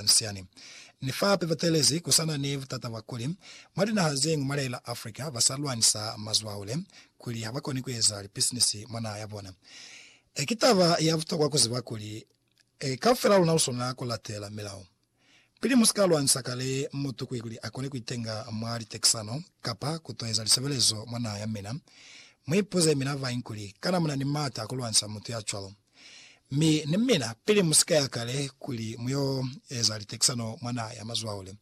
Anciani. Ni fa hape batelezi ku sa na ni butata bwa kuli, mwa linaha ze ñwi mwa lia la Africa ba sa lwanisa mazwaule kuli ha ba koni ku eza lipisinisi mwa naha ya bona. E Ki taba ya butokwa ku ziba kuli e kaufela luna lu swanela ku latela milao pili mu si ka lwanisa kale mutu ku kuli a kone ku itenga mwa litekisano kapa ku to eza lisebelezo mwa naha ya mina. Mu ipuze mina bañi kuli, Kana mu na ni m'ata a ku lwanisa mutu ya cwalo? Mi ni mina, pili mu si ka ya kale kuli mu yo eza litekisano mwa naha ya mazwaule,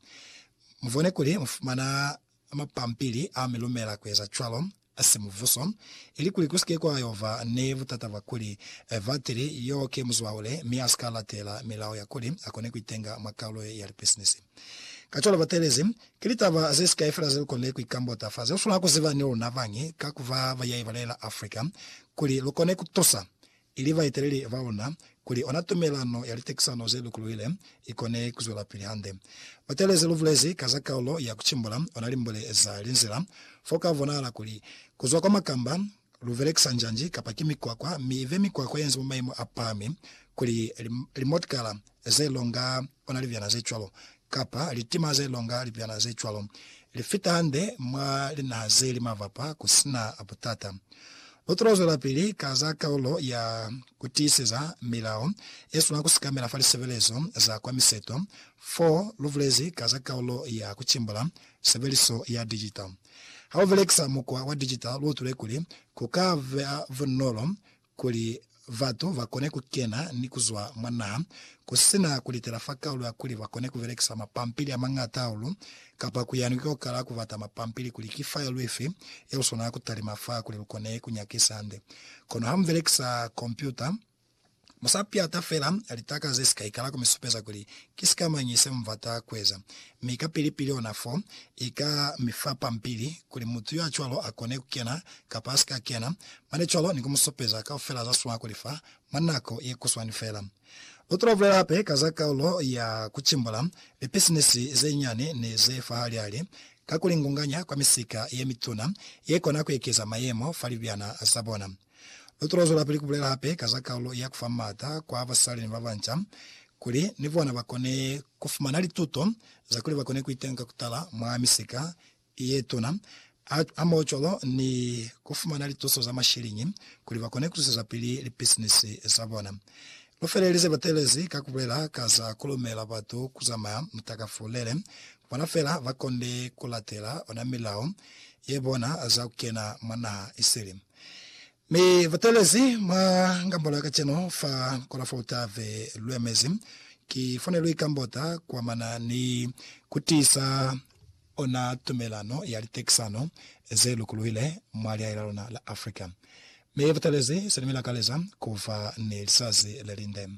mu bone kuli mu fumana mapampili a mi lumela ku eza cwalo, a si mubuso, ili kuli ku si ke kwa yo ba ni butata bwa kuli batili yo ki muzwaule mi a si ka latela milao ya kuli a kone ku itenga mwa kaulo ye ya lipisinisi. Kacwalo batelezi Ki litaba ze si kai fela ze lu konile ku ikambota fa ze lu swanela ku ziba ni luna bañi ka ku ba ba yaiba lela Africa, kuli lu kone ku tusa, ili baeteleli ba luna, kuli ona tumelano ya litekisano ze lukuluhile i kone ku zwelapili hande. Batele ze lu bulezi ka za kaulo ya ku cimbula ona limbule za linzila, fo ka bonahala kuli ku zwa kwa makamba, Lu belekisa njanji kapa ki mikwakwa, mi ibe mikwakwa yenze mwa mayemo a pahami, kuli limotkala ze longa ona libyana ze cwalo, kapa litima ze longa libyana ze cwalo, li fita hande mwa linaha ze li mavapa ku si na butata. Lu tolo zwelapili ka za kaulo ya ku tiiseza milao ye swanela ku sekamela fa lisebelezo za kwa miseto, fo lu bulezi ka za kaulo ya ku cimbula sebeliso ya digital. Ha u belekisa mukwa wa digital lu utule kuli ku ka ba bunolo kuli batu ba kone ku kena ni ku zwa mwa naha ku si na ku litela fa kaulu ya kuli ba kone ku belekisa mapampili a mañata hahulu kapa ku yani ko kala ku bata mapampili kuli ki file ifi ye lu swanela ku talima fa kuli lu kone ku nyakisa hande. Kono ha mu belekisa kompyuta, Mu sa piata fela litaka ze si ka ikala ku mi supeza kuli ki sika mañi se mu bata ku eza, mi kapili-pili ona fo i ka mi fa pampili kuli mutu yo a cwalo a kone ku kena kapa a si ka kena, mane cwalo ni ku mu supeza kaufela za swana ku li fa mwa nako ye kuswani fela. Lu tula bulela hape ka za kaulo ya ku cimbula lipisinisi ze nyani ni ze fahali-hali ka ku li ngunganya kwa misika ye mituna ye kona ku ekeza mayemo fa libyana za bona. Lu tolo zwelapili ku bulela hape ka za kalulo ya ku fa m'ata kwa basali ni babanca kuli ni bona ba kone ku fumana lituto za kuli ba kone ku iteñwa ka ku tala mwa misika ye tuna, hamoho cwalo ni ku fumana lituso za mashiliñi kuli ba kone ku zwisezapili lipisinisi za bona. Lu felelize batelezi ka ku bulela ka za ku lumela batu ku zamaya mutakafulele bona fela ba konde ku latela ona milao ye bona za ku kena mwa naha isili. Mi batelezi mwa Ngambula kacenu fa Kolofota be lwemezi ki fone lwi Kambota kuamana ni kutiisa ona tumelano ya litekisano ze lukuluhile mwa lihae la luna la Africa. Mi batelezi se ni mi lakaleza kuba ni lisazi lelinde.